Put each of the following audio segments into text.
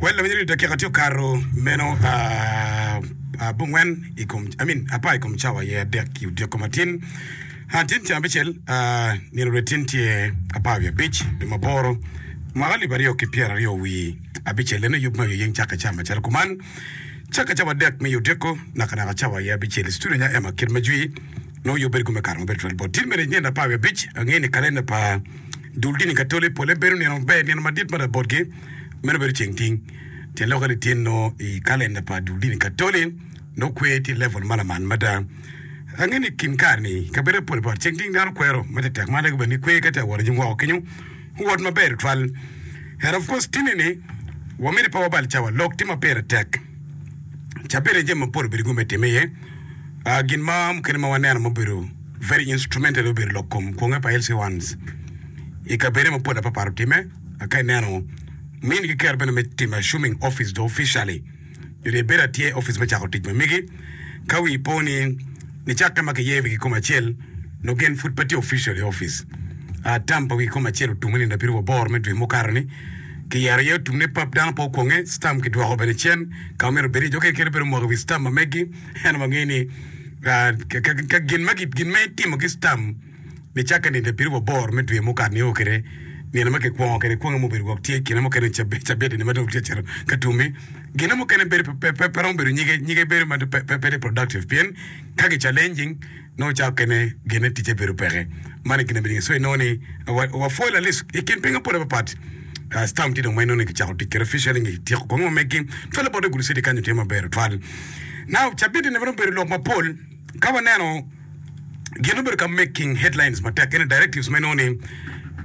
Wel lawinyere ni dakika tye okato meno abongwen i kom, I mean apar i kom cawa aye adek ki odyeko matin. Ah, tin ca abicel, ah, nino dwe tin tye apar wiye abic, dwe maboro, mwaka alip aryo ki pyeraryo wi abicel. Eno yub me oyeng cakke ca macalo kuman. Cakke cawa adek me odyeko, nakanaka cawa aye abicel. I studio nya Emma Kit Majwi. nongo yo bedo gume kato maber tutwal bot dit mere nyen lapar wiye abic. Angeyo ni kalenda pa dul dini Katoli pole bedo nino maber, nino madit mada botgi meno bedo ceng ting. Tyen lok aye lityen nongo i kalenda pa dul dini Katoli nongo kwer tye i level ma lamal mada. Angeyo ni i kin kare ni i kabedo mapol bot ceng ting dano kwero ma tektek ma lego bene ni kwer ka tye ka wot i nyim woko kenyo owot maber tutwal. And of course tinni ni wamiti pe wabal cawa lok tye ma pire tek. cabit aye jami mapol obedo kong me time iye aa gin ma mukene ma waneno ma obedo very instrumental obedo lok kom kwonge pa LC ones i kabede mapol apapat otime aka ineno min ki kero bene me timo assuming office do officially nyo dong ibedo atye office me cako tic ma migi ka wi po ni nicakke ma kiyeyo wigi koma acel nongo gin pud pe tye official i opic. A tam pa wigi koma acel otumme nino abiriwa boro me dwe mukato-ni. Kiyero aye otumme pap dano pe okwonge, stam kidwoko bene cen ka ma myero obed iye. Jo kekeni obedo omoko i wi stam ma megi, ento wangeyo ni ka gin ma itimo ki stam, Nicakke nino abiro wa bor me dwe mukat-nio kede nino ma kikwongo kede kwonge mubedo gwok tye kine mukene cabedde-ni ma dong tye cito ka tumme. Gine mukene bedo pe romo bedo nyige, nyige bedo ma pe productive pien ka ki challenging nongo ca okene gine ticce bedo peke. Man aye gin ma nining? So inongo ni wa pwol at least i kin pingo mapol aye papat. Stamp tye dong ma inongo ni kicako tic kede officially nyo kityeko kong ma megi. Twal labote gulu city kanyo tye maber twal. Now cabedde-ni waromo bedo lok mapol ka waneno. gin obedo ka making headlines matek ene directives me nongo ni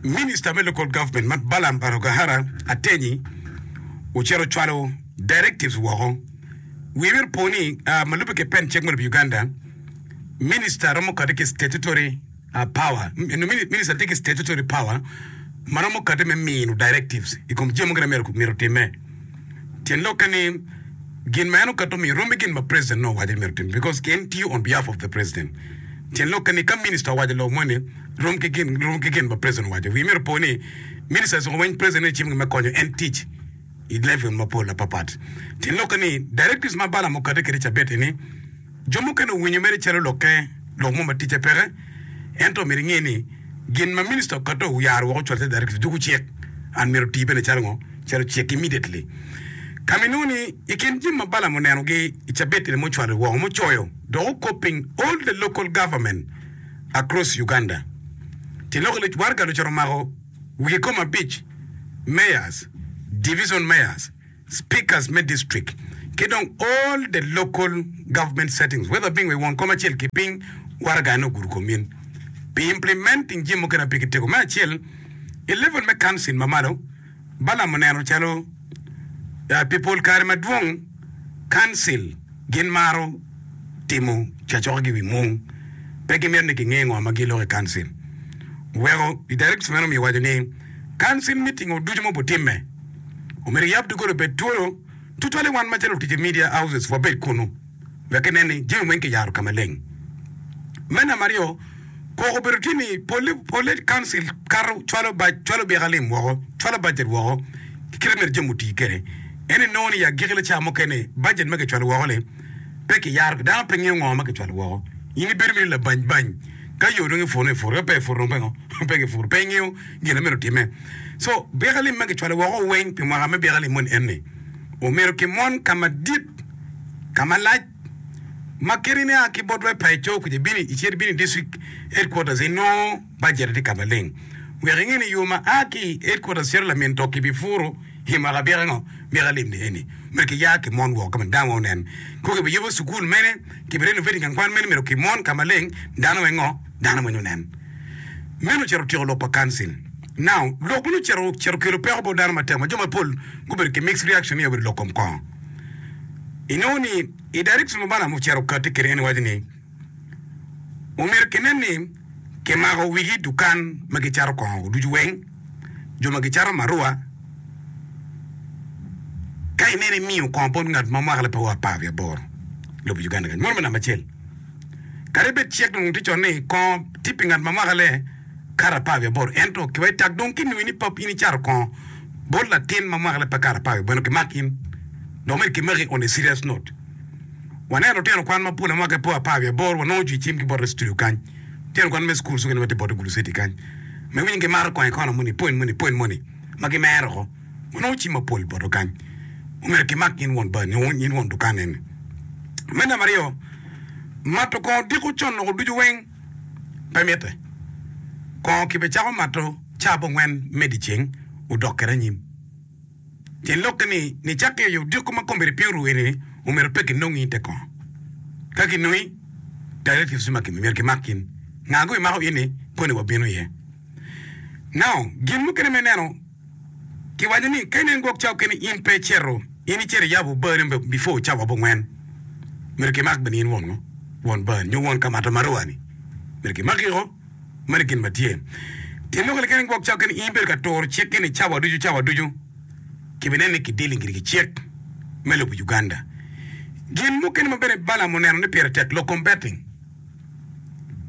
Minister me Local Government ma Balaam Barugahara Atenyi ocito ocwalo directives woko. Wiye myero opo ni ah, ma lubbe ki pen cik moni pi Uganda, Minister romo kati ki statutory ah, power, M- no, mini- Minister tye ki statutory power ma romo kati me mino directives i kom jami mogo gin ma myero myero otimme. Tyen lokke ni, gin ma en okato miyo rom ki gin ma president nongo owaco ni myero otim because en tiyo on behalf of the president. Tyen lokke ni ka minister owaco lok moni rom ki gin rom ki gin ma president owaco, wiye myero opo ni ministers onongo weny president ecimo gin me konyo en tic i level mapol apapat. Tyen lokke ni directives ma Balaam okato kwede cabit eni, Jo mukene owinyo mere calo lokke, lok mo ma ticce peke. Ento omyero inge ni, gin ma minista okato oyaro woko cwal te directive juku cik. An myero oti bene calo ngo? Calo cik immediately. Ka ma inongo ni i kin jami ma Balaam oneno gi i cabit eni mucwalo woko mucoyo dok okop piny all the local government across Uganda ti lok iluc waraga lucoto omako wigi koma abic mayors, division mayors, speakers me district, ki dong all the local government settings whether being we won kom acel ki piny waraga ene ogudo kom in pi implementing jami mukene ape ki tego. Me acel, i level me council ma malo, Balaam oneno calo pi pol kare madwong council gin maro timo cacokkagi i wi mung, pe gimito ni kinge ngo ma giloko i council. Oweko i directors meno omiyo owaco ni council meeting-o ducu ma obutimme, omyero eyab doggola obed twolo tutwale wan macalo lutic i Media Houses wabed kunnu wek enen ni jami weng kiyaro ka maleng. Me namba aryo, koko obedo tye ni polle polle Council kato cwalo bac cwalo byeka lim woko cwalo budget woko ki kite ma myero jami oti kwede ento inongo ni i agiki laca mukene budget ma kicwalo woko ni pe kiyaro dano pe ngeyo ngo ma kicwalo woko in ibedo mere labany bany ka yo dong iputo iputo ka pe iputo dong pingo pe kiputo pe ingeyo gin ma myero otimme. Co byekalim ma kicwalo woko weng pi mwaka me byekalim moni en ni, Omyero kimon ka madit, ka malac, ma keni nia ki bot rwai pa i co kuca ibino icit ibino i district headquarters inongo bajet atye ka maleng. Wek inge ni yo ma a ki i headquarters cito lamin to kibi puru i mwaka byekango byekalim ni eni myero kiya kimon woko ka ma dano weng onen. Kong kibiyubo cukul mene, kibi renovating gang kwan mene myero kimon ka maleng dano weng ngo dano moni onen. Meno ocito otyeko lok pa Kansin. Now, lok meno ocito ocito kelo peko bot dano matek ma jo mapol gubedo ki mixed reaction ni obedo lok kom kongo. Inongo ni i direction ma Balaam ocito okati kwede en waco ni omyero kinen ni kimako wigi dukan ma gicato kongo ducu weng, jo ma gicato marua, ka ineno imiyo kongo bot ngat ma mwaka lapar ki aboro lobo Uganda kany. Meno me namba acel. Kadi bed cik dong tye cone ni kongo tye pi ngat ma mwaka le kato apar wiye aboro, ento ki wa i tak dong kinwingo ni pap in icato kongo bot latin ma mwaka le pe kato apar wiye aboro, kimako in. Dok myero kimaki on a serious note. Waneno lutino kwan mapol ma mwakagi pe apar wiye aboro wanongo ocung i cim ki bote studio kany, lutino kwan me cukul cukene ma tye bote gulu citi kany ma iwinyo gimato kongo i kona moni, pwony moni, pwony moni ma gimero oko. gunongo cim mapol boto kany, omyero kimak nying won bar nyo nying won dukan eni. Me namba aryo, mato kongo diko con loko ducu weng pe mitte. Kongo kibecako mato caa abongwen me dyeceng odok kede anyim. Tyen lokke ni, nicak ki oyo odiko ma kombeddi piny oru eni-ni, omyero pe kinongi i te kongo. Ka kinongi, directives ducu ma kimiyo myero kimak in. Nga-gu imako in-ni koni wabino iye. Now, gin mukene me ineno. Kiwaco ni ka inen gwok cawa kene in pe icito, in icito iyabo obani before cawa abongwen, myero kimak bene in won ngo? Won bani nyo won kamata ma rowa ni? Myero kimaki o? Mani gin ma tye. Pien loko ni ka inen gwok cawa kene in ibedo ka turo cik gini cawa ducu cawa ducu, kibineno ni ki dealing giri ki cik me lobo Uganda. Gin mukene ma bene Balaam oneno ni pire tek, lokom betting.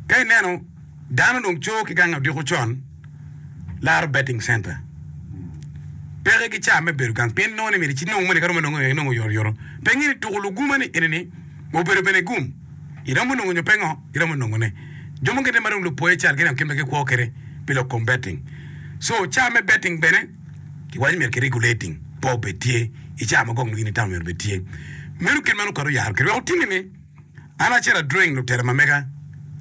Ka ineno dano dong co ki gang odiko con, laro betting center peke ki ca me bedo gang pien nongo ni myero ci nongo moni ka romo nongo inongo oyoto yoto. Pe ingini tuku luguma ni eni ni obedo bene gum iromo nongo nyo pe ngo iromo nongo ne. Jo mukene ma dong lupoye cal gin gin bene gi kwo kede pi lok kom betting. So ca me betting bene ki waco myero ki regulating pe obed tye ica ma gok nongo in itamu myero obed tye. Meno kit ma nongo kare oyaro kede wek otimi ni. An acito adreng lutela ma mega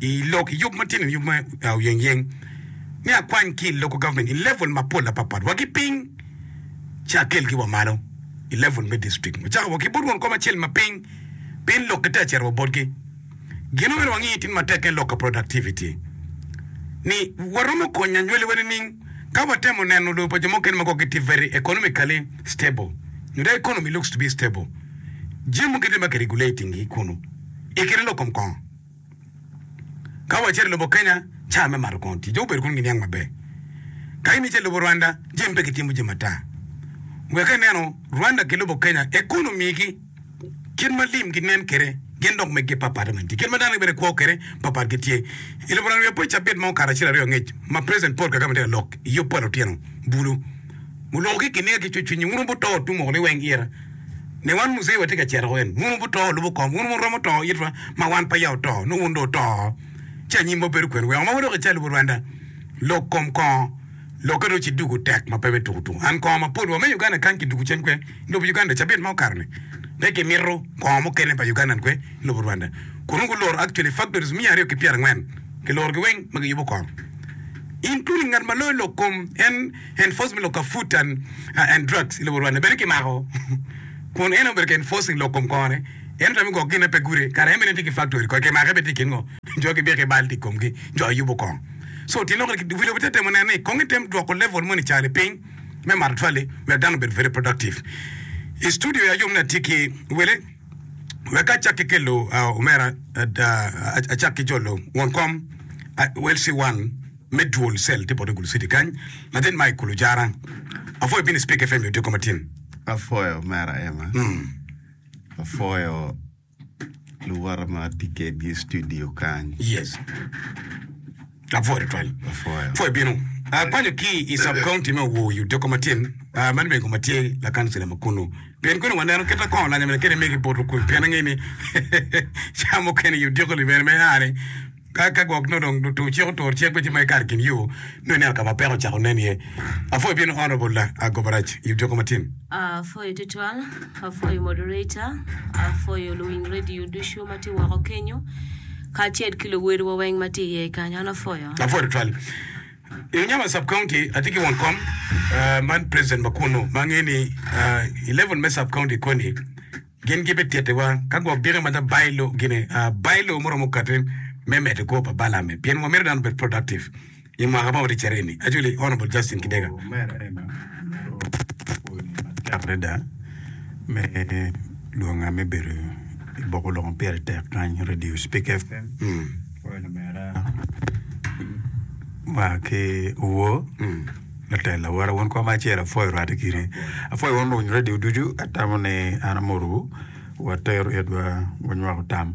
i lok i yub matino ni yub me oyeng yeng ni akwany ki i local government i level ma pol apat pat wa ki piny ci akel gi wa malo i level me district wa cako wa ki bot won kom acel ma piny piny lok ki te acito wa bot gi gin omyero wa ngi tin ma tek en lok ka productivity ni wa romo konyo anywali wa nining ka wa temo neno lobo pa jo mukene ma kor gi tye very economically stable nyo dong economy looks to be stable. jami mukene ma kiregulating gi kunu i kine lok kom kongo. Ka wacito i lobo Kenya, cawa me mato kongo tye, jo gubedo kunu giniang maber. Ka in icito i lobo Rwanda, jami pe kitimo jami ata. Wek inenu Rwanda ki lobo Kenya, economy gi, kit ma lim ginen kwede, gin dok meggi papatte bene tye. Kit ma dano gibino i kwo kwede, papat gi tye. I lobo Rwanda wiya pe ocabit ma okato acel aryo angec ma President Paul Kagame tye ka lok i yub pa lutino bulu. Muloko ki i kin niga ki cwecwiny ni, 'Wun wubito to tung woko liweng ira, ne wan Mucei watye ka cito woko eni. Wun wubito to lubo kom, wun wun romo to itwa ma wan peya oto, nongo wun dong wuto oo. Ci anyim ma bedo kwene, weko ma wadok i calle lubo Rwanda, lok kom kongo, lokke dong ci dugo tek ma pe me tuku tuku. An kongo ma pol wa me Uganda kany kiduku cen kwe i lobo Uganda cabit ma okato ni, pe kimito kongo mukene pa Ugandan kwe i lobo Rwanda. Kun nongo guloro actually factories miya aryo ki pyerangwen, kilorogi weng ma giyubo kongo. In kuni ngat ma loyo lok kom en enforcement lok ka food and and drugs i lobo Rwanda bene ki mako kun en aye obedo ka enforcing lok kom kongo ne en otamo gok gin na pe gude kara en bene tye ki factory kodi ki make bene tye i kin ngo jo ki biki bal tye i kom gi jo aye yubo kongo so tye lok ni lobo te temo neno ni kongo i tem dwoko level moni ca ni piny me mato twali wek dano obed very productive i studio ya yom ni atye ki wele. Wek acak ki kelo omera acak ki jolo won kom Welcy One me duol cell tye bot Gulu City kany, latin ma i kulu jara. Apwoyo bini Speke FM yo tye koma tin. Apwoyo omera Emma. Apwoyo luwote ma atye kedgi i studio kany. Yes. Lapwoyo tutwal pwoyo bino kwanyo ki i cub county me Owo i Odeko Matin ma lwego ma tye lakancila ma kunu. Pien kunu waneno kit ma kong olanya mene kene mege poto kulu pien angeyo ni cawa mukene i Odeko libere me aane ka ka gwok nongo dong lutur cik otur cik ci ma ikato i kin yo nongo ineno ka ma peko ocako nen iye. Apwoyo bino Honourable la Agobarac i Odeko Matin. Apwoyo tutwal, apwoyo moderator, apwoyo luwiny radio ducu ma tye woko kenyo. kacel ki luwedewa weng ma tye iye kany. An apwoyo. Apwoyo tutwal. I Unyama Sub County, atye ki won kom ma president ma kunnu ma angeyo ni i level me Sub County koni gin gibitittiwa ka gwok diki ma dha bailo gine. Bailo muromo kati me medo kwo pa balame pien wamito dano obed productive. I mwaka ma oticce aryo-ni, Acholi, Honourable Justin Kidega, Mayor Arema ogoyo koni matek adada me lwonga me bedo i boko lok ma pire tek kany, Radio Spik FM, owaco omera ma ki Owor, latel awora wun koma acel apwoyo orwatte kiri. Apwoyo wun luny radio ducu, atamo ni an amotowu, watero itwa wanywako tam.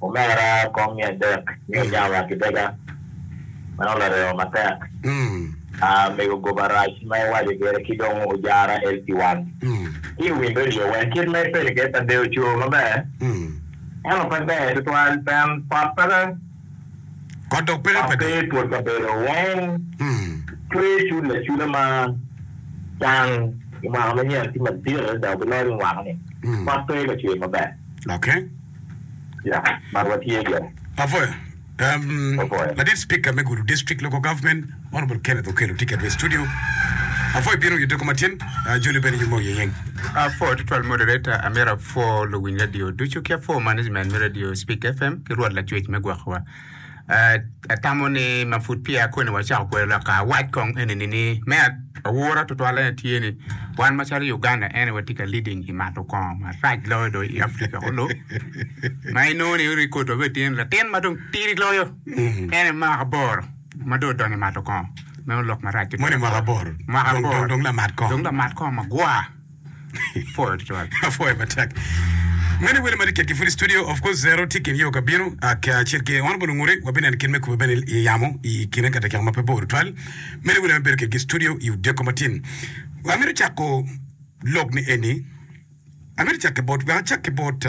Omera kom me adek ni ojamo wa ki dega. Meno lareo matek. Aa mego goba rac ma iwaco kede ki dong ojara el pi wan ki i wim radio wen kit ma ipeni kede pa deo coo maber ento pe ber tutwal pien kot peke kot pe i twol kabedo weng cwer cul lacula ma can i mwaka manyen tye madit adada obiloc weng wako ni kot pe ka cwer maber. Yeah, mar watye gire. Apwoyo. Um, Apwoyo. Ladit Speaker me Gulu District Local Government, Honorable Kenneth Okello tye kedwa i studio. Apwoyo bino i doko matin, uh, Joli bene yumo iye yeng. Apwoyo tutwal moderator, amyero apwo luwiny radio ducu ki apwo management me radio Speak FM ki rwot lacwec me gwokowa. Atamo ni ma pud peya koni wacako kwede lok ka awac kong enini ni me aura tutwalle ni tye ni wan macalo Uganda en aye watye ka leading i mato kongo marac loyo dong i Africa kulu ma inongo ni record wa bene tye ni latin ma dong tidi loyo en aye mwaka aboro ma dong odonyo i mato kongo. Meno lok marac tutwal. Moni mwaka aboro. Mwaka Dong- aboro. dong- dong lamat kongo. Dong lamat kongo magwar. Apwoyo tutwal. Apwoyo matek. Many wele madi kit ki food studio of course zero tye kin yo ka bino aka acel ki honorable ngure wa binen kin me kubo bene i yamo i kine ka dakika ma pe bor twal many wele me bedo kit ki studio i odeko matin wa mito chako lok ni eni amito chak ki bot wa chak ki bot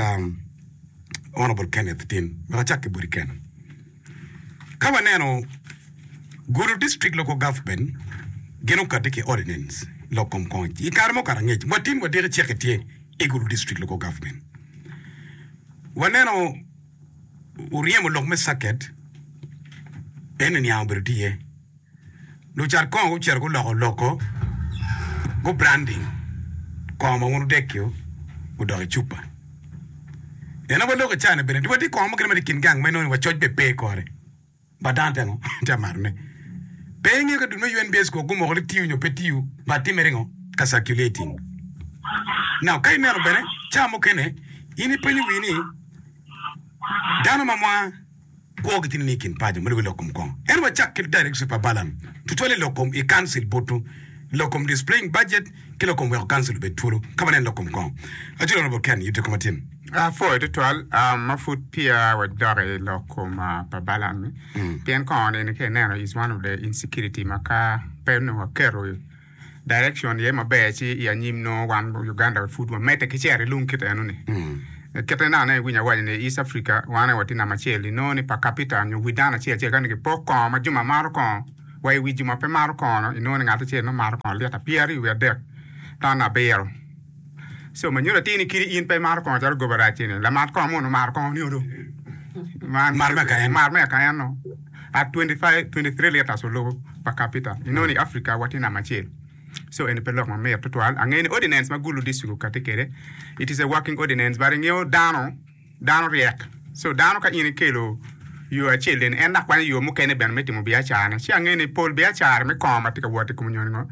honorable Kenneth tin wa chak ki bot Kenneth Ka waneno, Gulu District Local Government gin okati ki Ordinance lok kom kony. I kare mukato angec, watim wadiki ceke tye i Gulu District Local Government. Waneno oryemo lok me circuit, en oniang obedo tye iye. Lucat kongo gucito guloko loko gu branding kongo ma wun wudekio gudok i cupa. En aye waloko i China bene. Watye ki kongo mukene ma tye i kin gang ma inongo ni wa coc bene pe i kore. But dano tye ango? Tye ka marone. Pe ingeyo ka dul me UNBS kong gumoko ni tiyo nyo pe tiyo but timmere ngo? Ka circulating. Now ka ineno bene ca mukene in ipenyo wii ni dano ma mwa Kwogi tye nining i kin paco ma lubi lok kom kong? Ento wacak ki Directorship pa Balaam, tutwale i lok kom i Council butu, lok kom Displaying Budget, ki lok kom Weko Council obed twolo ka waneno lok kom kong. Aculo Honorable Ken, yub jokkom atin. Apwoyo tutwal ma pud peya wadok i lok kom pa Balaam ni, pien kongo nene ka ineno is one of the insecurity ma ka pe onongo waketo Direction aye maber ci i anyim nongo wan Uganda pud wamedde ki cito i lung kit eno ni. Kite na aneno iwinyo awaco ni East Africa wan aye watye namba acel inongo ni per capita nyo wi dano acel acel kani kipok kongo ma juma maro kongo wa i wi juma pe maro kongo inongo ni ngat acel nongo maro kongo lita pyeraryo wi adek tan abiro. So ma nyuto atir ni kadi in pe imaro kongo calo goba rac ini, lamat kongo mono maro kongo nio do. Man Mar me akaen. Mar me akaen no. At 25, 23 liters olubo per capita. Inongo ni Africa watye namba acel. So eni pe lok ma mit tutwal. Angeyo ni ordinance ma Gulu District okati kede, it is a working ordinance but ingeyo dano Dano ryek. So dano ka in ikelo yo acel eni, en dok kwanyo yo mukene bene me timo biacarane. Ci angeyo ni pol biacara me kong ma tye ka wot i kom nyonyo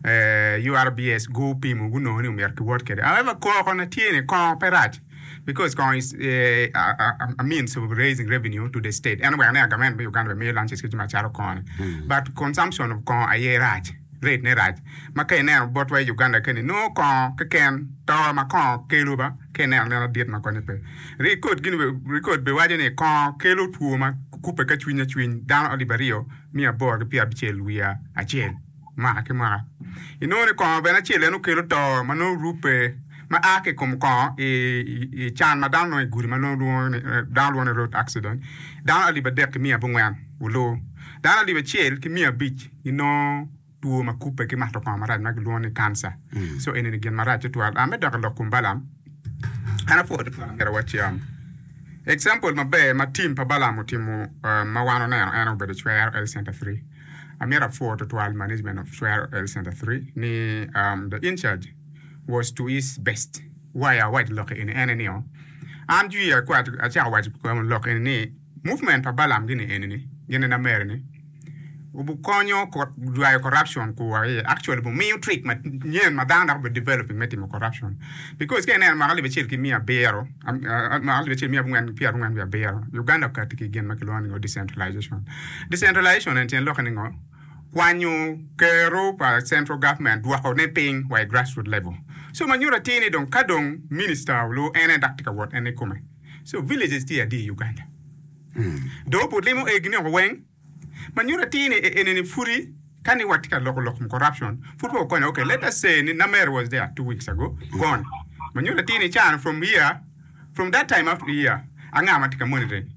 URBS gupimo, gunongo ni omyero kiwot kwede. However, koko na tye ni kong pe rac because kong is a means of raising revenue to the state. En oweko ni a government me Uganda bene miyo lunches ki jami acalo kong-ni. But consumption of kong aye rac, rate ne rac. ma ka ineno botwa i Uganda keni nongo kongo keken to ma kongo kelo ba ka ineno neno dit ma konye pe. Rikod gini be rikod be waco ni kongo kelo two ma kube ka cwiny acwiny dano alip ariyo miya aboro ki pyer abicel wiya acel mwaka ki mwaka. Inongo ni kongo bene acel en okelo to ma nongo rubbe ma a ki kom kongo i, i, i can ma dano nongo i gudi ma nongo lwongo ni dano lwongo ni road accident dano alip adek ki miya abongwen oloo dano alip acel ki miya abic ginongo two ma kubbe ki mato kongo marac ma gilwongo ni cancer so eni ni gin marac tutwal ah me dok ilok kom Balaam an apwoo tutwal amyero waciam example maber ma team pa Balaam otimo ma wan oneno en obedo cwero health center three amyero apwoo tutwal management of cwero health center three ni the in charge was to his best why awaco lok eni ene nio an jwi acako waco lok eni ni Movement pa Balaam gini eni ni gin ena mere ni obu konyo jwayo corruption ku wa iye actually bu miyo trick ma nyen ma dano dok obedo developing me timo corruption because ka ineno mwaka alip acel ki miya abiro mwaka alip acel miya abongwen pyera abongwen wiye abiro Uganda okati ki gin ma kilwongo ni ngo decentralization decentralization eni tyen lokke ni ngo kwanyo kero pa central government dwoko ne piny wa i grassroot level so ma nyuto atir ni dong ka dong minister olu en en dok tye ka wot en ikome So villages tye adi i Uganda? Dong opud limo egi ni oko weng. Ma nyuto atir ni e enini pudi kani watye ka loko lok kom corruption pud pe okonyo okay let us say ni Namer was there two weeks ago gone ma nyuto atir ni can from here from that time up to here anga matye ka monitoring?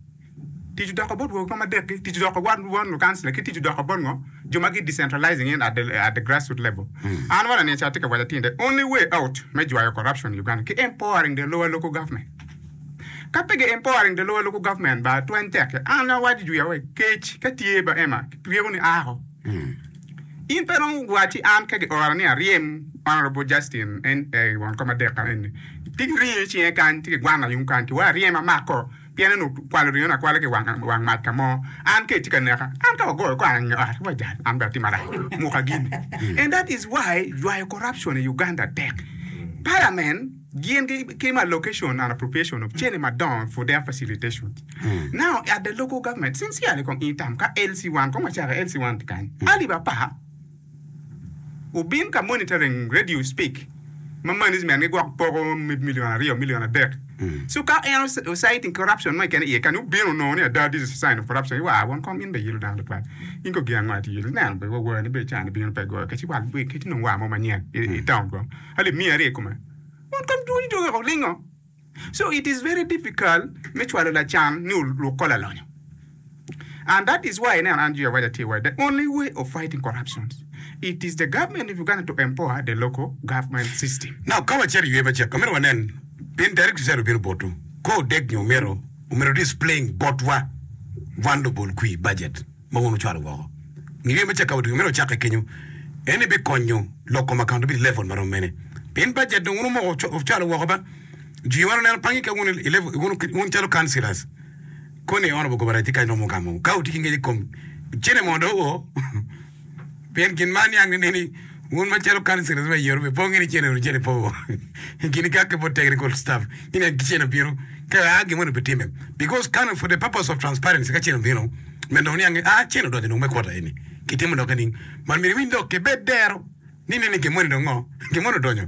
Tic odoko bot wego kom adek gi? Tic odoko bot lukancila ki tic odoko bot ngo? jo ma gi decentralizing in at the, at the grassroot level. An one aniya ca atye ka waco atir ni the only way out me jwayo corruption in Uganda ki empowering the lower local government. Ka pe gi empowering the lower local government ba twany tekke. An awaco jwi awe kec ka tye ba Emma ryeko ni a ako. In pe romo wacci an ka gi ora ni aryem Honourable Justin en eh, won kom adek ka eni. Tye ki ringo icinge kany, tye ki gwana yung kany ki wa aryem amako. pien en okwalo ringone akwala ki i wang mac ka mo. An ka itye ka neka, an ka wagoyo kor ange ot, wajal, an bene atim marac muka gini. And that is why ywayo corruption i Uganda tek. Parliament gin ki ma allocation and appropriation of cene madongo for their facilitation. Now at the local government, sincerely kong in term ka LC1, kong wacak LC1 tye kany, Ali bapa, Wubin ka monitoring radio speak ma management gi gwok poko me million aryo million adek so ka en osite in corruption mo ikene iye kani wubin onongo ni ada this is a sign of corruption iwa won kong in be iyilo dano tutwal in ko gin ango ati iyilo ineno be wawar ni be cani bino pe goyo keci wal keci nongo war mo manyen itown kong alip miya aryo ikome won kong dwoni dong weko olingo. So it is very difficult me cwalo lacan ni oluk ko lalonyo and that is why ineno an Jehovah Jah tye waco the only way of fighting corruption it is the government of Uganda to empower the local government system. Now ka wacito i ywe ma cek amito wanen in Derrick Tusero bino botwu kor odeg nyo omyero omyero displain botwa wan lubol kwir budget. ma wun wucwalo woko. Ngeyo me cakkawu dong myero ocakke kenyo. En ebikonyo lok kom akaunt obed i level ma rom mene. Pien bajet dong wun wumoko wucwalo woko ba. Jwi wano neno pangi ka wun i level, wun, wun calo councillors. Koni i Honourable Gobaraj tye kany romo gamo ka wutye ki ngec i kom cene mondo o. Pien gin ma aniang nene ni wun macalo kanicel iriba i yoto pe po ngene cene ru cene po i kine ka kepo technical stuff ni nen ki cene obino ka a gin moni bitime because kano for the purpose of transparency ka cene obino me dong niange a cene odonyo dong me quarter eni kitimo dok ening man myero iwiny dok kibed dero ni nene gin moni dong ngo gin moni odonyo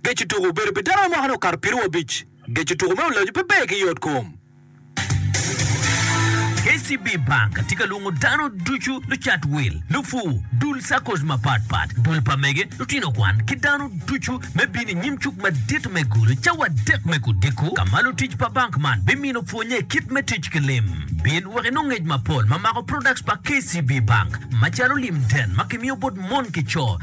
Geco tuko obedo pi dano ma mwakane okato piero wiye abic. Geco tuko me olaco pe ber ki yotkom. KCB Bank tye ka lwongo dano ducu, lucat wil, lupur, dul SACCOs mapat pat, dul pa mege, lutino kwan, ki dano ducu me bino i nyim cuk madit me Gulu cawa adek me Kudiko ka ma lutic pa bank man bimino pwonye kit me tic ki lim. Bin wek inong ngec mapol ma mako products pa KCB Bank macalo lim den ma kimiyo bot mon ki co,